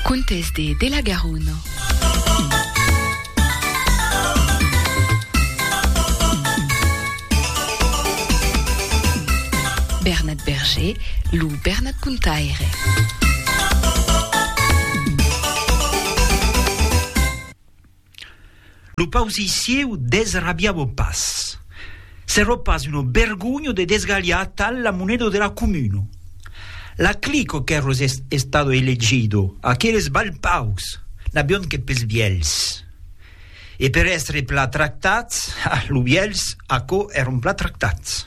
Contes de de la Garona. Bernat Berger, lo Bernat Contaire. Lo pausir sieu desrabiavo pas. S'ero pas uno bergogno de desgalhar atal la moneda de la comuna. La clico qu'ero estado elegido, aqueles balpaus, n'avion que pes vielhs. E per èstre plat tractats, ah, lo vielhs, aquò, eron plat tractats.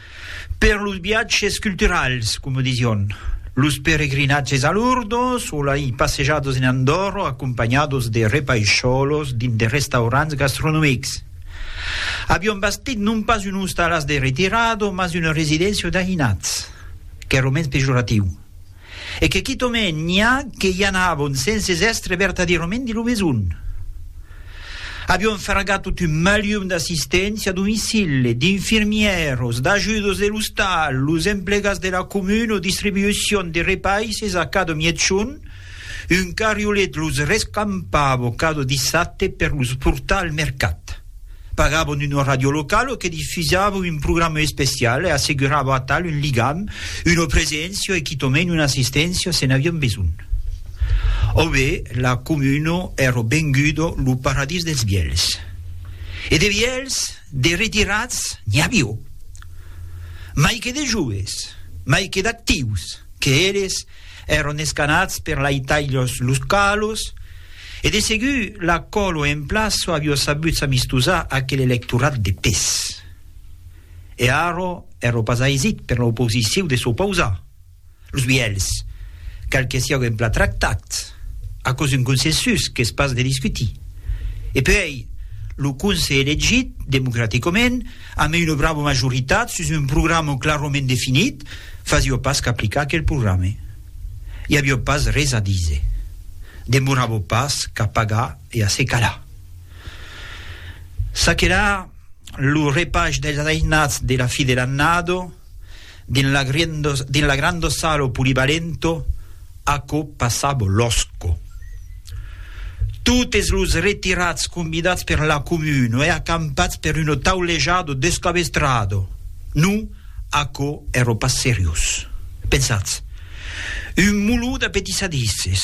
Per los viatges culturals, coma disión, los peregrinatges a Lourdes o lai passejadas en Andorra acompanhadas de repaisholos dins de restaurants gastronomics. Avión bastit non pas un ostalàs de retirada, mas una residéncia d'aïnats, qu'èra mens pejoratiu. E que quitomèn n'i a que i anavon senses èstre vertadierament de lo besonh. Avión fargat tot un malium d'assisténcia a domicili, d'infirmièros, d'ajudos de l'ostal, los emplegats de la comuna o distribucion de repaisses a cada mièchon, un carriolet los rescampava cada dissabte per los portar al mercat. Pagavon una ràdio locala que difusava un programa especial e assegurava atal un ligam, una preséncia e quitament una assisténcia se n'avián besonh. Aubé, la comuna èra venguda lo paradís dels vièlhs. E de vièlhs, de retirats, n'i avió. Mai que de joves, mai que d'actius, que eles, Èron escanats per laitailhs localos e de segur la còlo en plaço avió sabut s'amistosar aquel electorat de pes. E arro èro pas aisit per l'oposiciu de s'opausar. Los vielhs, cal que siáu en plan tractat, aquò's un consensus qu'es pas de discutir. E puèi, lo conse elegit democraticament, amé una brava majoritat sus un programa clarament definit, fasió pas qu'aplicar aquel programa. I avió pas res a díser. Demoravo pas qu'a pagar e a se calar. Çaquelà, lo repach dels ajainats de la fi de l'annada, Dins la granda sala o polivalento, aquò passava lòsco. Totes los retirats convidats per la comuna e acampats per una taulejada descabestrada. Non, aquò èra pas seriós. Pensatz, un mulot d'apetissadisses.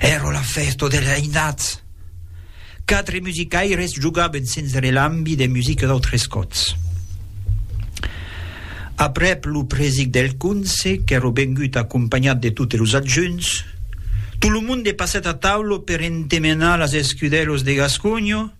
Èra la fèsta dels ainats. Quatre musicaires jogaven sens relambi de musica d'autres còts. Aprèp lo presic del conse, qu'èra vengut acompanhat de totes los adjunts, tot lo monde passèt a taula per entemenar las escudèlas de Gasconha,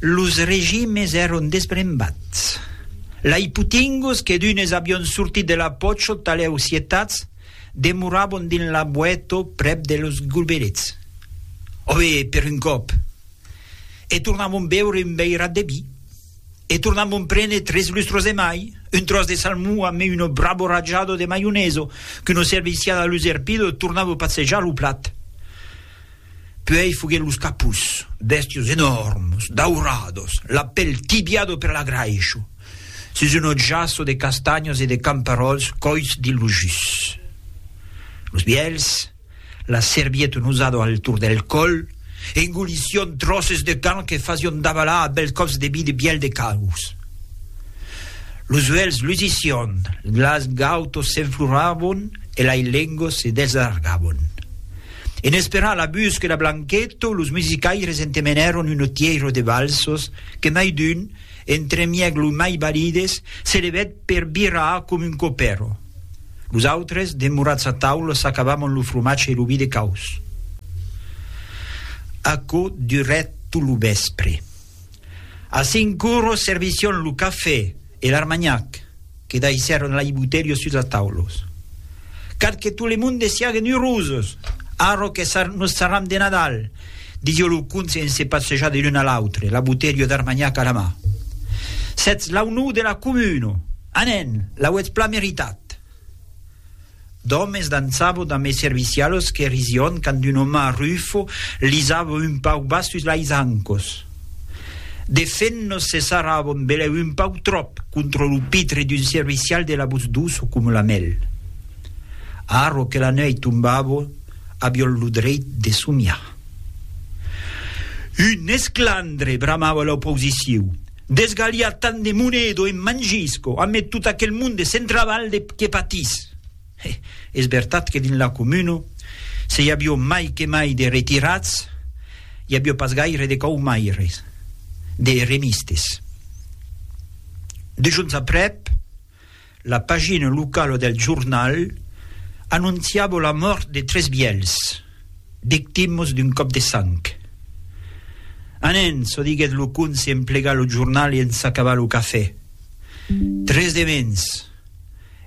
Los regimes èron desbrembats. Lai potinguts que d'unes avion sortit de la pòcho talèu sietats, demorabon dins la boèto prèp de los gulberets, ove per un còp, e tornabon beure un veirat de vi, e tornabon prene tres lustros de mai, un tròç de salmon ame uno brabo rajado de maioneso, qu'uno servicial a l'userpido tornava passejar lo plat. Puèi foguèt los capus, bèstios enòrmes, daurados, la pèl tibiado per l'agraisho, sus un otjasso de castanhas e de camperòls còits dins lo jus. Los vièlhs, la servieta nosada al torn del còl, engolission tròces de carn que fasion davalar a bèls còps de bi de bièlh de caus. Los uèlhs lusission, las gautas s'enfloràvon e lai lengos se desallargàvon. En esperar la busca de Blanqueto, los musicaires entemenèron un otièiro de valsos que mai d'un, entremièg los mai balides, se levèt per birrar com un copèro. Los autres, demorats a taula, s'acabamon lo fromatge e lo vi de caus. Aquò durèt tot lo vèspre. A Sincurro servission lo cafè e l'armagnac que daissèron lai boutelhos sus las taulos. Cal que tot le monde siaguen eurosos, arro que nos sarram de Nadal, disió lo conte en se passejar de l'un a l'autre, la boutelha d'armagnac a la mà. Sètz l'aunor de la comuna! Anen, l'auetz plan meritat! D'òmes dançavo damb es servicialos que rision quand un òme arrufo lisavo un pauc bas sus lais ancos. De fent nos cessaravo en beleu un pauc tròp contra lo pitre d'un servicial de la vos doço coma la mèl. Arro que la nuèit tombavo aviol lo dreit de somiar. Un esclandre! bramava l'oposiciu. Desgalhar tant de monedo en mangisco, a met tot aquel monde de Centravalde que patís. E es vertat que dins la comuna se i avió mai que mai de retirats, i avió pas gaire de caumaires, de remistes. Dejons aprèp, la pagina locala del jornal anonciava la mòrt de tres vièlhs, victimas d'un còp de sang. Anen, çò diguèt lo conse en plegar lo jornal e en s'acabar lo cafè. Tres de mens.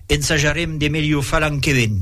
Ensajarem de melhor far l'an que ven.